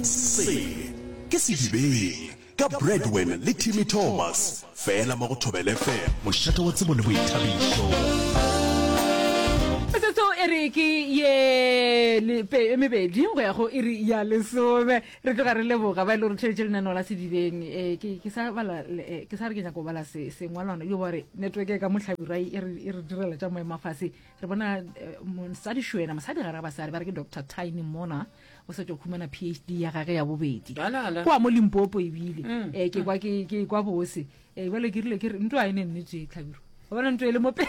Se ke Sedibeng ka Bradwin le Timmy Thomas fela mo go Thobela FM, mošate wa tsebo le boithabišo. Metsotso e re ke ye e mebedi go ya go iri ya lesome re tloga re leboga ba e le gore theletše lenaneo la sedibeng um ke sa re ke nyaka go bala sengwalwana yo ba re network ya ka mohlabira e re direla tša moemafase re bona eh, mosadi šwena mosadi ga ra basadi ba re ke doctor tiny mona o setse o khumana phd ya gage ya bobedi kwa mo limpopo ebile um ke kwa ke kwa bose um jale ke rile ke re nto a e ne nnete tlhabiro o bona nto e le mope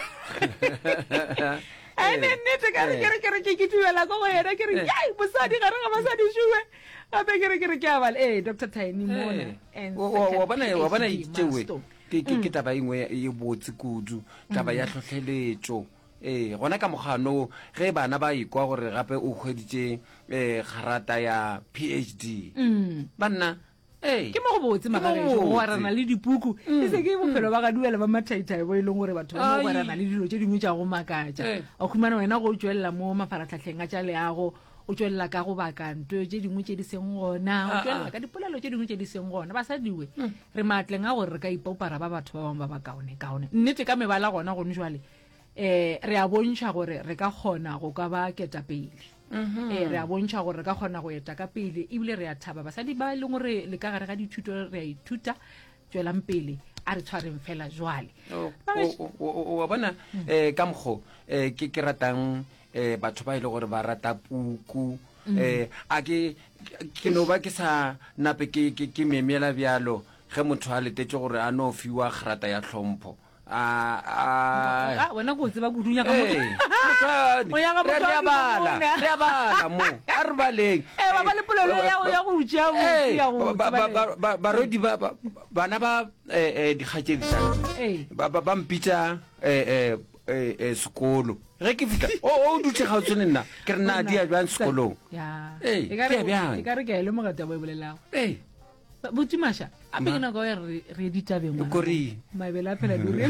a e ne nnete kare kere kere ke ke dumela ko go yena ke re kai mosadi gare ga basadi šuwe gape kere kere ke abale ee doctor tiny mona wa bona itsewe ke ke ke taba engwe e botse kudu taba ya tlhotlheletšo ee gona ka mokgano ge bana ba ikwa gore gape o hweditše um kgarata ya phd banna ke mo go botse magareoarana le dipuku e se ke bophelo ba gaduwa le ba mathaithai bo e leng gore batho ba moarana le dilo tše dingwe tša go makatša wa khumana wena go o tswelela mo mafaratlhatlheng a tša leago o tswelela ka go baka nto tse dingwe tse di seng gona o ah, tswelela ah. ka dipolelo tse dingwe tse di seng gona basadiwe hmm. re maatleng a gore re ka ipaupara ba batho ba bangwe ba ba kaone kaone nnete ka mebala gona gone jale um re a bontšha gore re ka kgona go ka ba ketapele um re a bontšha gore re ka kgona go eta ka pele ebile re a thaba basadi ba e leng gore le ka gare ga dithuto re a ithuta tšwelang pele a re tshwareng fela jwale oh, oh, oh, wa bona um ka mokgo um ke ratang um batho ba e le gore ba rata puku um a ke ke no ba ke sa nape ke memela bjalo ge motho a letetse gore a no fiwa kgrata ya tlhompho Ah, wena ko tseba go dunya ka mo. O ya ga motho wa bala. Ya bala mo. A re baleng. Eh ba ba le polelo ya go ya go utša go ya go. Ba ba rodi ba bana ba eh eh dikgatšedi tsa. Eh ba ba ba mpitsa eh eh eh sekolo. Ge ke fihla o o dutse ga o tsene nna ke re na di ya jwang sekolong. Ya. Eh ke ya bjang. Ke ka re ke ya le mogata bo e bolelago. Eh. botse masha a pele nako ya re re ditabeng kore mabele a phela di re